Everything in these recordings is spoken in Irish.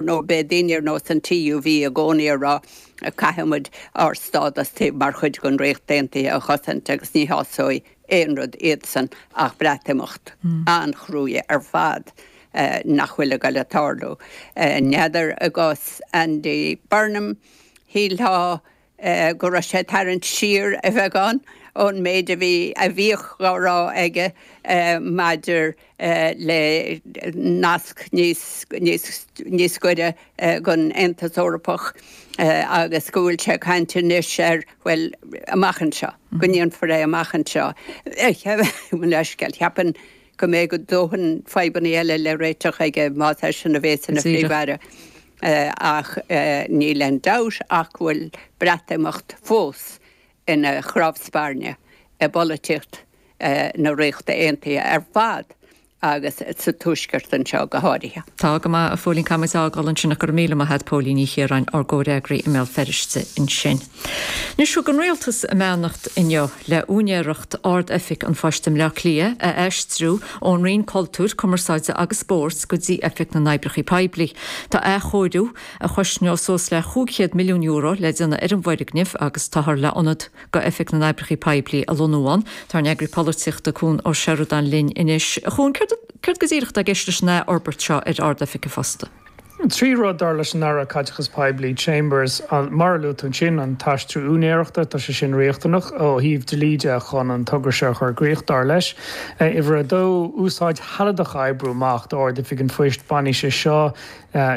nó b'é daoine ar nós an TUV i gcónaí ag rá, caithfidh muid ár stádas tí mar chuid den Ríocht Aontaithe a chosaint agus ní shásóidh aon rud iadsan ach Breatimeacht an-chruaidh ar fad nach bhfuil ag dul a tarlú. N'fheadar i gcás Andy Burnham, shílfeá, go raibh sé ag tarraingt siar beagán ón méid a bhí, a bhíodh dhá rá aige maidir le nasc níos, níos, níos goire don Aontas Eorpach agus go bhfuil sé ag caint anois ar, bhuel, amach anseo, go ndéanfar é amach anseo. Mo leithscéal, cheapann. go mbeidh a dhóthain fadhbanna eile le réiteach aige más eisean a bhéas ina Phríomh-Aire ach níl aon dabht ach go bhfuil Breatimeacht fós ina chnámh spairne i bpolaitíocht na Ríochta Aontaithe ar fad agus sa Tuaisceart anseo go háirithe. Tá go maith, a Phóilín, caithfidh muid a fhágáil ansin ach go raibh míle maith agat Póilín Ní Chiaráin, ár gcomhfhreagraí i mBéal Feirste ansin. Anois, thug an rialtas a mbeannacht inniu le úinéireacht Ard-Oifig an Phoist i mBleá Cliath a aistriú ón Roinn Cultúir, Cumarsáide agus Spóirt go dtí Oifig na nOibreacha Poiblí. Tá athchóiriú, a chosnós suas le cúig chéad milliún euro, le déanamh ar an bhfoirgneamh agus táthar le ionad d'Oifig na nOibreacha Poiblí a lonnú ann. Tá ár n-eagraí polaitíochta Cuan Ó Seireadáin linn anois. A Chuain, céard go díreach atá i gceist leis an athfhorbairt seo ar Ard-Oifig an Phosta? Trí rud, dar leis an Aire Caiteachais Poiblí Chambers, mar a luaigh tú ansin, an t-aistriú úinéireachta, tá sé sin riachtanach ó thaobh dlí de chun an togra seo a chur i gcrích, dar leis, uimhir a dó, úsáid shealadach a oibriú amach d'Ard-Oifig an Phoist, bainfidh sé seo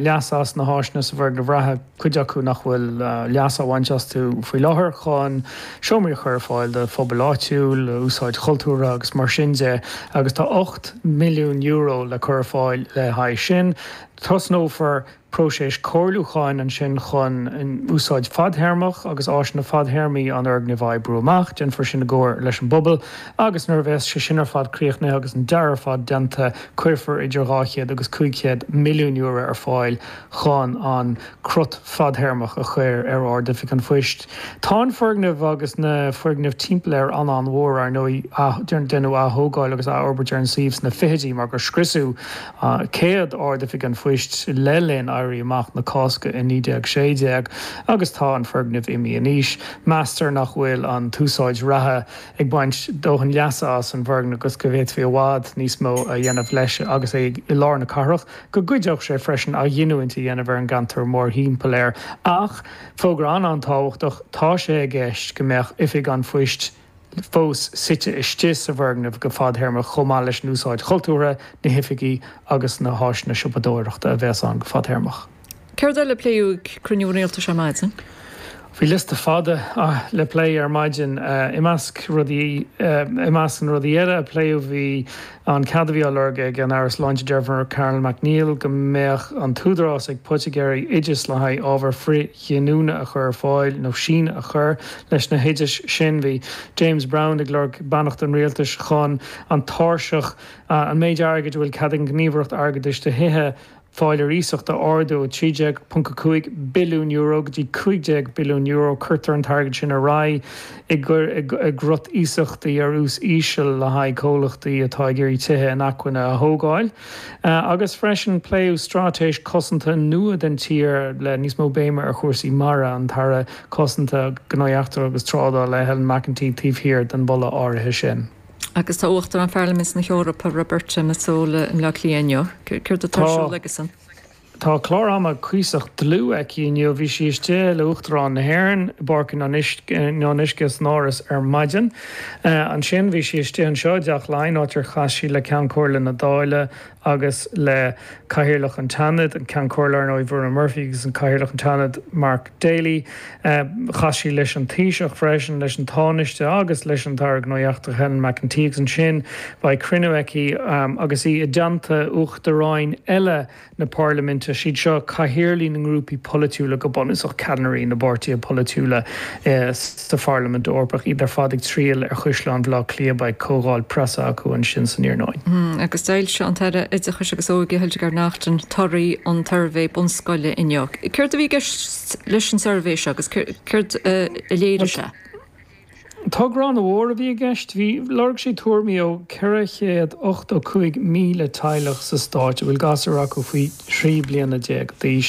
leas as na háiseanna sa bhfoirgneamh reatha. cuid acu nach bhfuil leas á bhaint astu faoi láthair, chun seomraí a chur ar fáil do phobail áitiúil, úsáid chultúrtha agus mar sin de, agus tá €8 milliún le cur ar fáil le haghaidh sin. Tosnófar próiseas comhairliúcháin ansin chun úsáid fadthéarmach agus áiseanna fadthéarmaí an fhoirgnimh a oibriú amach. Déanfar sin i gcomhar leis an bpobal agus nuair a bheas sé sin ar fad críochnaithe agus an dearadh ar fad déanta, cuirfear idir €200 agus €500 milliún ar fáil chun an crot fadthéarmach a chur ar Ard-Oifig an Phoist. Tá an foirgneamh agus na foirgnimh timpeall air an-an-mhór, ar ndóigh. Deineadh aththógáil agus athfhorbairt ar an suíomh sna fichidí mar gur scriosadh céad Ard-Oifig an Phoist le linn Éirí Amach na Cásca i 1916 agus tá an foirgneamh imithe in aois. Meastar nach bhfuil an t-úsáid reatha ag baint dóthain leasa as an bhfoirgneamh agus go bhféadfaí i bhfad níos mó a dhéanamh leis agus é i lár na cathrach. go gcuideodh sé freisin athghiniúint a dhéanamh ar an gceantar mórthimpeall air. Ach, fógra an-an-tábhachtach, tá sé i gceist go mbeadh oifig an phoist fós suite istigh sa bhfoirgneamh go fadthéarmach chomh maith leis an úsáid chultúrtha, na hoifigí agus na háiseanna siopadóireachta a bheas ann go fadthéarmach. Céard eile a pléadh ag cruinniú rialtais ar maidin? Bhí liosta fada le plé ar maidin. I measc na rudaí eile a pléadh bhí an cead a bhí á lorg ag an Aire Sláinte Jennifer Carroll MacNeill go mbeadh an t-údarás ag poitigéirí oideas le haghaidh ábhar frithghiniúna a chur ar fáil nó síneadh a chur leis na hoidis sin. Bhí James Browne ag lorg beannacht an Rialtais chun an tairseach, an méid airgid a bhfuil cead ag an nGníomhaireacht Airgeadais do Thithe, fáil ar iasacht a ardú ó €13.5 billiún go dtí €15 billiún, cuirtear an t-airgead sin ar aghaidh i gcruth iasachtaí ar ús íseal le haghaidh comhlachtaí atá ag iarraidh tithe inacmhainne a thógáil, agus freisin pléadh straitéis cosanta nua den tír le níos mó béime ar chúrsaí mara, an tAire Cosanta, Gnóthaí Eachtracha agus Trádála, Helen McEntee, taobh thiar den mholadh áirithe sin. Agus tá Uachtarán Pharlaimint na hEorpa, Roberta Metsola, i mBleá Cliath inniu. Céard atá ar siúl aicise? Tá clár ama cuíosach dlúth aici inniu. Bhí sí istigh le hUachtarán na hÉireann i bPáirc an Fhionnuisce san Áras ar maidin. Ansin bhí sí istigh anseo i dTeach Laighean, áit ar chas sí le Ceann Comhairle na Dáile, agus le Cathaoirleach an tSeanaid, an Ceann Comhairle ar ndóigh, Verona Murphy, agus Cathaoirleach an tSeanaid, Mark Daly. Chas sí leis an Taoiseach freisin, leis an Tánaiste agus leis an Aire Gnóthaí Eachtracha, Helen McEntee, agus ansin beidh cruinniú aici agus í i dteannta uachtaráin eile na Parlaiminte, siad seo cathaoirligh na ngrúpaí polaitiúla go bunúsach, ceannairí na bpáirtithe polaitiúla. sa Pharlaimint Eorpach, iad ar fad ag triall ar Chaisleán Bhaile Átha Cliath. Beidh comhdháil preasa acu ansin san iarnóin. Agus d'fhoilsigh an tAire Oideachais agus Óige, Hildegarde Naughton, torthaí an tsuirbhé bunscoile inniu. Céard a bhí i gceist leis an suirbhé seo agus céard a léirigh sé? Togra an-mhór a bhí i gceist. Lorg sé tuairimí ó 485,000 teaghlach sa Stát a bhfuil gasúir acu faoi thrí bliana déag d'aois.